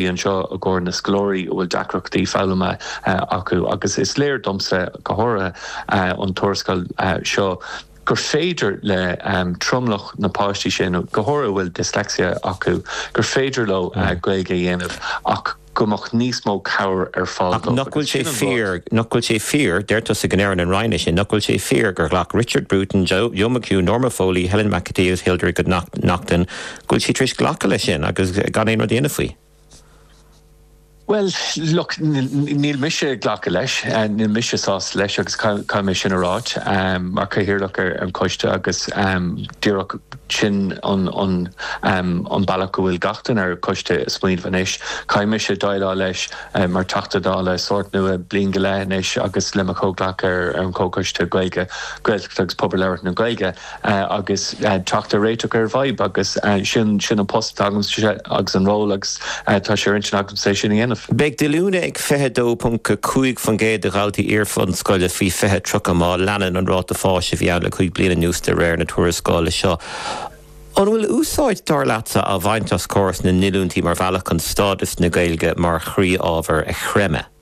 anseo i gcomhair na scoláirí a bhfuil deacrachtaí foghlama acu agus is léir domsa, go háirithe, ón tuarascáil seo gur féidir le tromlach na bpáistí sin, go háirithe a bhfuil dyslexia acu, gur féidir leo Gaeilge a dhéanamh ach go mbeadh níos mó cabhair ar fáil dóibh. Ach nach bhfuil sé fíor, nach bhfuil sé fíor, deir tusa go ndearna an Roinn é sin, nach bhfuil sé fíor gur ghlac Richard Bruton, Joe McHugh, Norma Foley, Helen McEntee, Hildegarde Naughton, go bhfuil siad tar éis glacadh leis sin agus gan aon rud a dhéanamh faoi? Bhuel, look, níl mise ag glacadh leis, níl mise sásta leis agus caithfidh mé sin a ráit mar chathaoirleach ar an choiste agus díreach sin an bealach go bhfuil gach duine ar an choiste ag smaoineamh anois. Caithfidh mise déileáil leis mar Teachta Dála sórt nua bliain go leith anois agus le mo chomhghleacaithe ar an chomhchoiste Gaeilge, Gaeltachta agus Pobail Labhartha na Gaeilge, agus teacht ar réiteach ar an bhfadhb agus sin, sin an post atá agamsa agus an ról agus tá sé ar intinn agamsa é sin a dhéanamh. Beidh díolúine ag 22.5% de dhaltaí iarbhunscoile faoi 20 30 má leanann an ráta fáis a bhí ann le cúig bliana anuas de réir na tuarascála seo. An bhfuil úsáid, dar leatsa, á bhaint as córas na ndíolúintí mar bhealach chun stádas na Gaeilge mar chroí-ábhar a chreimeadh?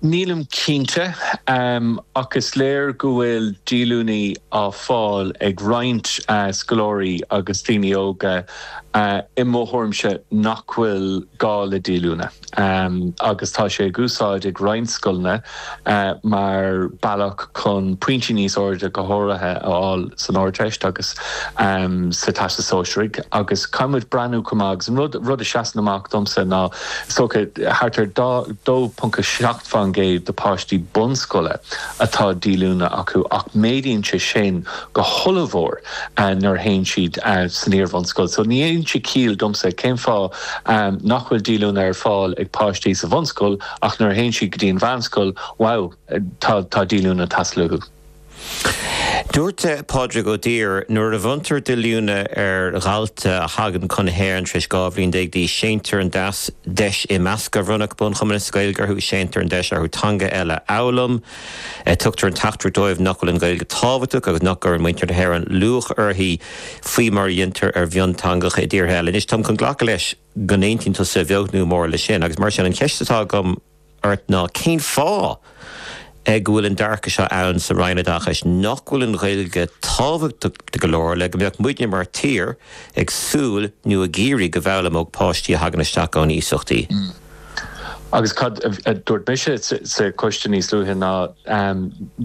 Nílim cinnte, ach is léir go bhfuil díolúine á fáil ag roinnt scoláirí agus daoine óga i mo thuairimse nach bhfuil gá le díolúine agus tá sé ag úsáid ag roinnt scoileanna. mar bealach chun pointí níos airde, go háirithe, a fháil san Ardteist agus sa Teastas Sóisearaigh agus caithfidh muid breathnú chomh maith agus an rud, rud a sheasann amach domsa ná, is dócha, thart ar 2.7 fán gcéad de páistí bunscoile atá díolúine acu ach méadaíonn sé sin go hollmhór nuair a théann siad san iarbhunscoil so ní dhéanann sé ciall domsa cén fáth nach bhfuil díolúine ar fáil ag páistí sa bhunscoil Ach nuair a théann siad go dtí an mheánscoil, wow, tá díolúine ag teastáil uathu. Dúirt Pádraig Ó Duibhir, Nuair a bhronntar díolúine ar dhalta a thagann chun na hÉireann tar éis 12 bhliain d'aois, séantar an deis imeasctha a bhronnfadh bunchumas Gaeilge orthu, séantar an deis orthu teanga eile a fhoghlaim, tugtar an teachtaireacht dóibh nach bhfuil an Ghaeilge tábhachtach agus nach gcuireann muintir na hÉireann luach uirthi faoi mar a dhéantar ar mhionteangacha i dtíortha eile. Anois, táim chun glacadh leis. go n-aontaíonn tusa beag nó mór leis sin agus mar sin, an cheist atá agam ort ná cén fáth go bhfuil an dearcadh seo ann sa Roinn Oideachais nach bhfuil an Ghaeilge tábhachtach go leor le go mbeadh muidne mar tír ag súil nó ag iarraidh go bhfoghlaimeodh páistí a thagann isteach ón iasacht í Agus cad a dúirt mise sa choiste níos luaithe ná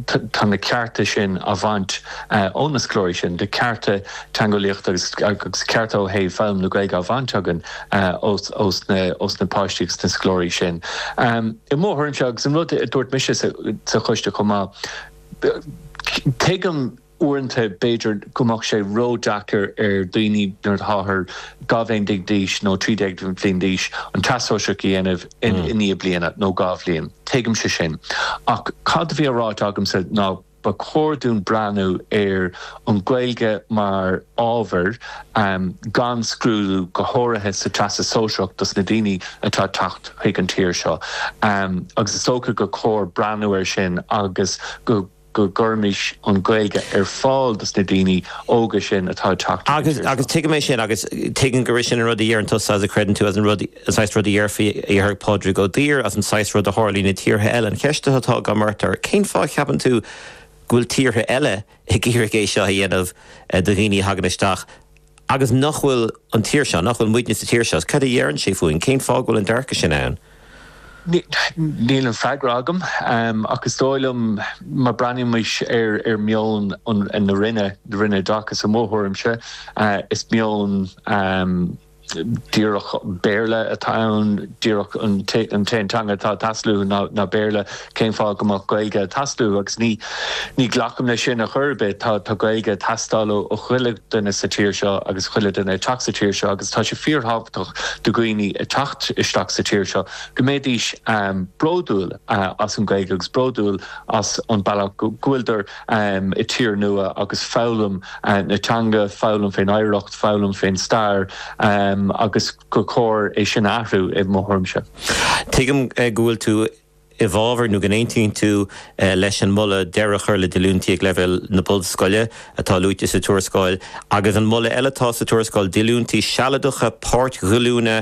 tá na cearta sin á bhaint ó na scoláirí sin, tá cearta teangeolaíochta agus cearta ó thaobh foghlaim na Gaeilge á bhaint againn ós na páistí agus na scoláirí sin i mo thuairimse. Agus an rud a dúirt mise sa choiste chomh maith, tuigim, Uaireanta, b'fhéidir go mbeadh sé ró-deacair ar dhaoine nuair atáthar dhá bhliain déag d'aois nó trí déag bliain d'aois an Teastas Sóisearach a dhéanamh i ndiaidh bliana nó dhá bhliain. Tuigimse sin. Ach cad a bhí á ráit agamsa ná ba chóir dúinn breathnú ar an Ghaeilge mar ábhar gan scrúdú, go háirithe sa Teastas Sóisearach dos na daoine atá ag teacht chuig an tír seo. Agus is dócha gur chóir breathnú air sin agus go. go gcuirimis an Ghaeilge ar fáil dos na daoine óga sin atá ag teacht chuig an tír seo. Agus tuigim é sin agus tuigim gurb é sin an rud a deireann tusa agus a chreideann tú, is an rud, an saghas rud a dhéarfaí, a dhéarfadh Pádraig Ó Duibhir, is an saghas rud a tharlaíonn i dtíortha eile. An cheist atá agam ort ná, cén fáth a cheapann tú go bhfuil tíortha eile ag iarraidh é seo a dhéanamh do dhaoine a thagann isteach, Agus nach bhfuil an tír seo, nach bhfuil muidne sa tír seo, cad a deireann sé fúinn, cén fáth go bhfuil an dearcadh sin ann? Níl an freagra agam, ach is dóigh liom, má breathnaímis ar mheon na Roinne, na Roinne Oideachais i mo thuairimse, is meon díreach Béarla atá ann, díreach an t-aon teanga atá ag teastáil uathu ná Béarla. Cén fáth go mbeadh Gaeilge ag teastáil? Agus ní ghlacaim le sin ar chor ar bith. Tá Gaeilge ag teastáil ó chuile dhuine sa tír seo agus chuile dhuine ag teacht sa tír seo agus tá sé fíor-thábhachtach do dhaoine ag teacht isteach sa tír seo go mbeidís bródúil as an Gaeilge agus bródúil as an bealach go bhfuiltear i tír nua agus foghlaim na teanga, foghlaim fén oidhreacht, foghlaim fén stair agus gur cóir é sin a athrú i mo thuairimse. Tuigim go bhfuil tú i bhfabhar nó go n-aontaíonn tú leis an moladh deireadh a chur le díolúintí ag leibhéal na bunscoile atá luaite sa tuarascáil agus an moladh eile atá sa tuarascáil, díolúintí sealadacha páirtdíolúine